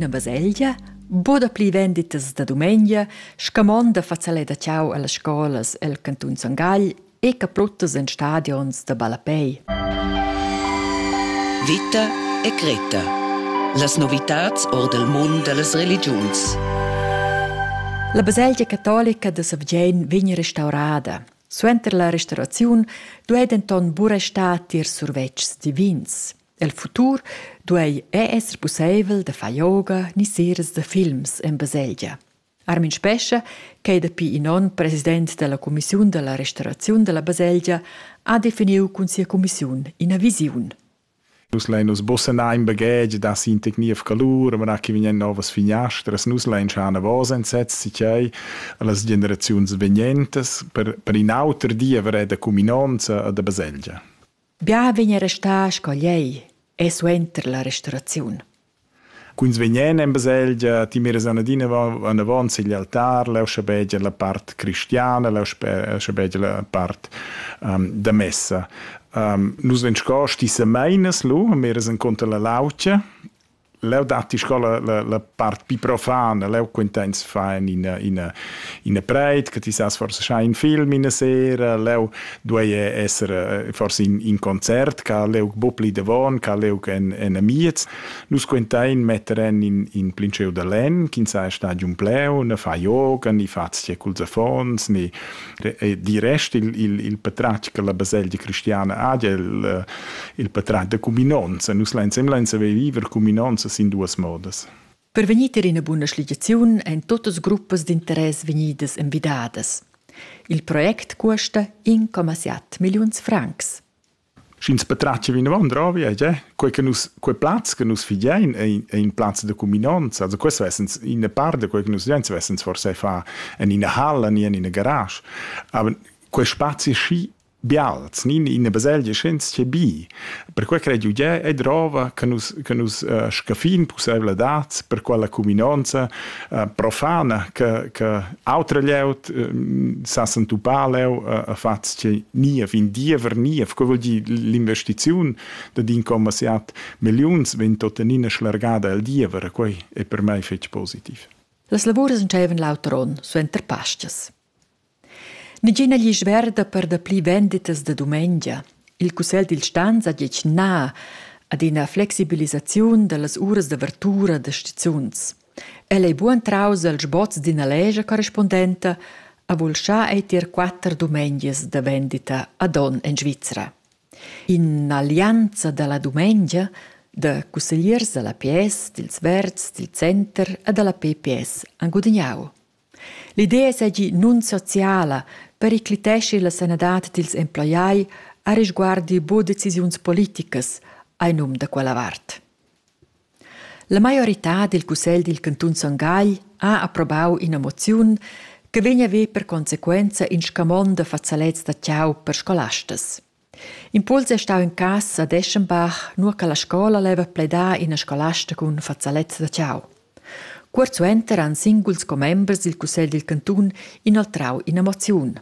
Na baselgia, bod pli venditas da dumengia, scamonda fazzalè da ciao allas scolas el cantun Son Gagl e capruttas en stadions da ballapei. Vita e Greta. Las novitats or del mund dellas religiuns. La baselgia catolica de Savgein vegn restaurada. Suenter la restauraziun duei denton buca star tier survetschs divins. El futur duei ei esser pusseivel da far yoga ni seras da films en baselgia. Armin Spescha, ch'ei dapi in onn president dalla cumissiun dalla restauraziun dalla baselgia, ha definiu cun sia cumissiun ina visiun. Nus lein nus bussenar in baghetg da sin technief calur, ma che vegnan novas finiastras, nus lein schar navos enzets sichei las generaziuns vegnentas per, per in auter diever da cuminonza e da baselgia. Bia vegn restà sco lei e suenter la restauraziun. Cuns vegnan en baselgia, ti miras anadina anavant sigl altar, leu schabegia la part cristiana, leu schabegia la part um, da messa. Um, nus vegn sco stissameinas lu, miras enconter la laucia Leu datti sco la, la, la part più profana, leu quintens fan ina, ina, ina preit, che ti sas forse schai in film in sera, leu duei esser eh, forse in, in concert, ca leu bo pli davon, ca leu en, en amiez. Nus quintein metteren in, in plinceu da len, ch'in sa stadium pleu, ne fa yoga, ni fa zie culs affons, ni, di rest il, il, il patratg che la baselgia cristiana ha, il, eh, il patratg da cuminonza. Nus l'ensemble saver viver cuminonza sin duas modas. Per vegnir ter ina buna schligiaziun ein totas gruppas d'interess vegnidas envidadas. Il project custa 1,7 milliuns francs. sch'ins patratgia vinavant ravi e tge, quei che nus, quei plaz che nus fidein ei, ei in plaz da cuminonza, also questo essens in part da quei che nus fidein, essens forse fa en ina halla ni en ina garage, aber quei spazi schi bials, ni in una baselgia schens che bi. Per quei crei giuge e drova che nus che nus uh, scaffin pussevla dat per quella cuminonza profana che, che autre lieut sa sentupà leu a fatz che nie vin diever nie co vuol dir l'investiziun da din commerciat millions vin totenina schlargada el diever quei è per me fetg positiv. Las lavurs entscheven l'auter onn suenter pastas. Negina glisch verda per dapli venditas da dumengia. Il cussegl dil stans ha detg na ad ina flexibilisaziun dallas uras d'avertura da stizuns. El ei buc entraus el sboz d'ina lescha corrispondenta, ha vulschà ei tier quatter dumengias da vendita ad onn en Svizra. In'allianza dalla dumengia da cussegliers dalla PS, dils Verds, dil Center e dalla PPS han gudignau. L'idea seigi nunsociala, pericliteschi la sanadad dils emploiai arisguardi buca decisiuns politicas, ei num da quella vart. La maioritad dil cussegl dil cantun Son Gagl ha approbau ina moziun che vegn a ver per consequenza in scamond da fazalets da tgau per scolastas. Impuls è stau in cass a Deschenbach, nua che la scola leva pledar ina scolasta cun fazalezza da tgau. Cuort suenter han singuls commembers dil cussegl dil cantun inoltrau ina moziun.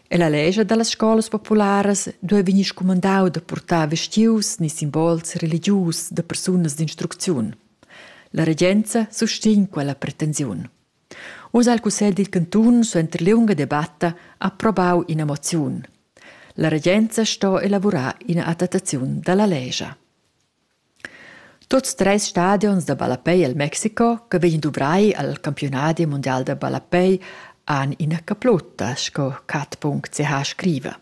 E la lescha dallas scolas popularas duei vegnir scumandau da purtar vestius ni simbols religius da persunas d'instrucziun. La regenza sustegn quella pretensiun. Uss ha il cussegl dil cantun suenter liunga debatta approbau ina moziun. La regenza sto elavurar ina adattaziun dalla lescha. Tuts treis stadions da ballapei el Mexico che vegin duvrai al campiunadi mundial da ballapei han ina caplutta, sco cat.ch scriva.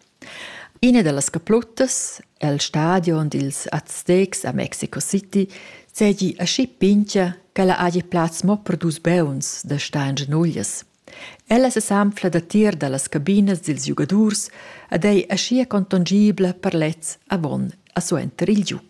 Ina da las caplottas è il stadion dils Aztecs a Mexico City seigi aschi pintga ch'ella hagi plaz mo per dus beuns da star en genuglias. Ella sesanfla datier dallas cabinas dils giugadurs ed ei aschia contongibla per lez avon a suenter il giug.